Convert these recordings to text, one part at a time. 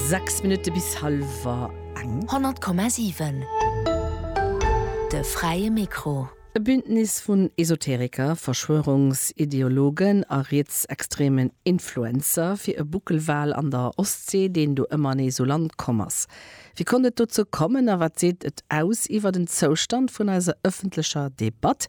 Sechs Minutte bis hallwer eng. 100,7 De fräie Mikro. E Bündnis vun Esoteriker, Verschwörungsideologen a rietsextremen Influencer fir e Buckelwal an der Ostsee, deen do ëmmernees u Land komm ass. Wéi konnt et dozou kommen a wat seet et aus iwwert en Zoustand vun eiser ëffentlecher Debatt?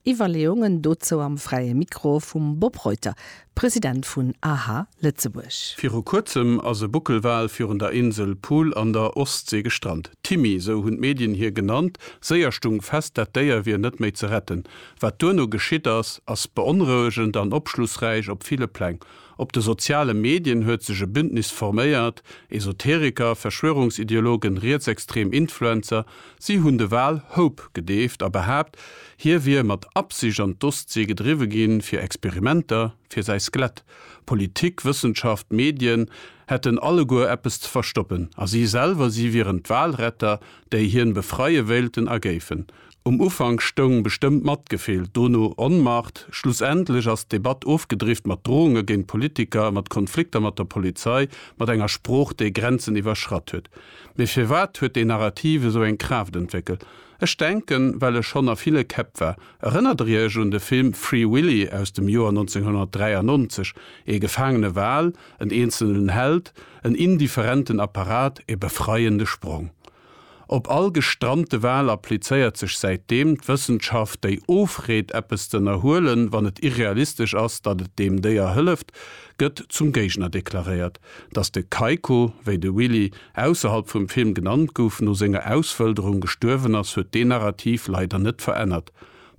Iwwerleeungen dozou am Fräie Mikro vum Bob Reuter, President vun aha Lëtzebuerg. Viru kuerzem ass e Buckelwal virun der Insel Poole an der Ostsee gestrant. Timmy, esou hunn d'Medien hie genannt, séier stung fest, dat Déier wier net méi ze retten. Wat duerno geschitt ass, ass beonrouegend an opschlussräich op ville Pläng. Op de soziale Medien huet sech e Bündnis forméiert, Esoteriker, Verschwörungsideologen, rietsextrem Influencer. Si hunn de Wal Hope gedeeft a behaapt, hie wier mat Absicht an d'Ostsee gedriwwe ginn, fir Experimenter, fir säi Skelett. Politik, Wëssenschaft, Medien hätten alleguer eppes ze verstoppen. A si selwer, si wieren d'Walretter, déi hien befreie wéilten a géifen. Um Ufank stoung bestëmmt Matgefill, dono Onmacht. Schlussendlech ass d'Debatt ofgedrifft mat Drohunge géint Politiker, mat Konflikter mat der Polizei, mat enger Sprooch, déi Grenzen iwwerschratt huet. Mee firwat huet déi Narrativ esou eng Kraaft entwéckelt? Ech denken, well e schonn a ville Käpp war. Erënnert der Iech un de Film Free Willy aus dem Joer 1993? Ee gefaangene Wal, en eenzelnen Held, en indifferenten Apparat, e befreiende Sprong. Op all gestrante Wal applizéiert sech säitdeem d'Wëssenschaft, déi ofreet, eppes z'ënnerhuelen, wann et irrealistesch ass, datt et deem Déier hëlleft, gëtt zum Géigner deklaréiert. Datt de Keiko, wéi de Willy ausserhalb vum Film genannt gouf, no senger Auswëlderung gestuerwen ass, huet deen Narrativ leider net verännert.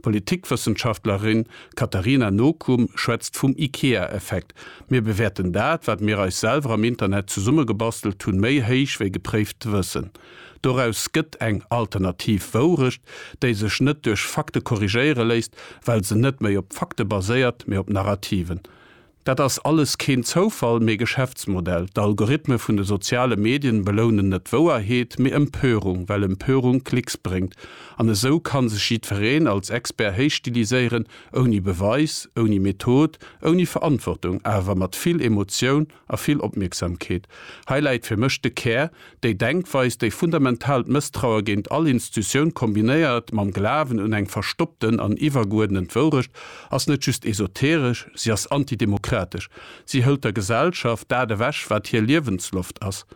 D'Politikwëssenschaftlerin Katarina Nokum schwätzt vum Ikea-Effekt, Mir bewäerten dat, wat mir eis selwer am Internet zesummegebastelt hunn, méi héich wéi gepréift Wëssen. Doraus gëtt eng alternativ Wourecht, déi sech net duerch Fakte korrigéiere léisst, well se net méi op Fakte baséiert, mee op Narrativen. Dat ass alles keen Zoufall, mee Geschäftsmodell. D'Algorithme vun de soziale Medien belounen net Wouerheet, mee Empörung, well Empörung Klicks bréngt. An esou kann sech jiddfereen als Expert héichstiliséieren, ouni Beweis, ouni Method, ouni Verantwortung, awer mat vill Emotioun a vill Opmierksamkeet. Hei läit fir mech de Kär, Déi Denkweis, déi fundamentaalt Mësstraue géint all Instutioun kombinéiert mam Glawen un eng verstoppten an iwwergeuerdent Wourecht, ass net just esoteresch, si ass antidemokratesch. Si hëlt der Gesellschaft dat ewech, wat hir Liewensloft ass,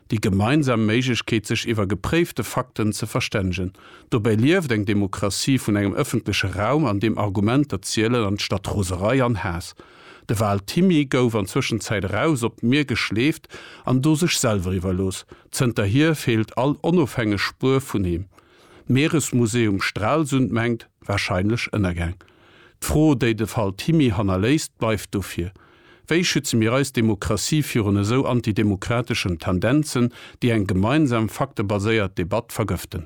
déi gemeinsam Méiglechkeet, sech iwwer gepréifte Fakten ze verstännegen. Dobäi lieft eng Demokratie vun engem ëffentleche Raum, an deem Argumenter zielen, anstatt Roserei an Haass. De Val Thimmy gouf an Zwëschenzäit eraus op d'Mier geschleeft an do sech selwer iwwerlooss. Zënterhier feelt all onofhängeg Spuer vun him. D'Mieresmuseum Stralsund mengt, wahrscheinlech ënnergaang. D'Fro, déi de Val Thimmy hannerléisst, bleift dofir, Wéi schütze mir eis Demokratie virun esou antidemokrateschen Tendenzen, déi eng gemeinsam faktebaséiert Debatt vergëften?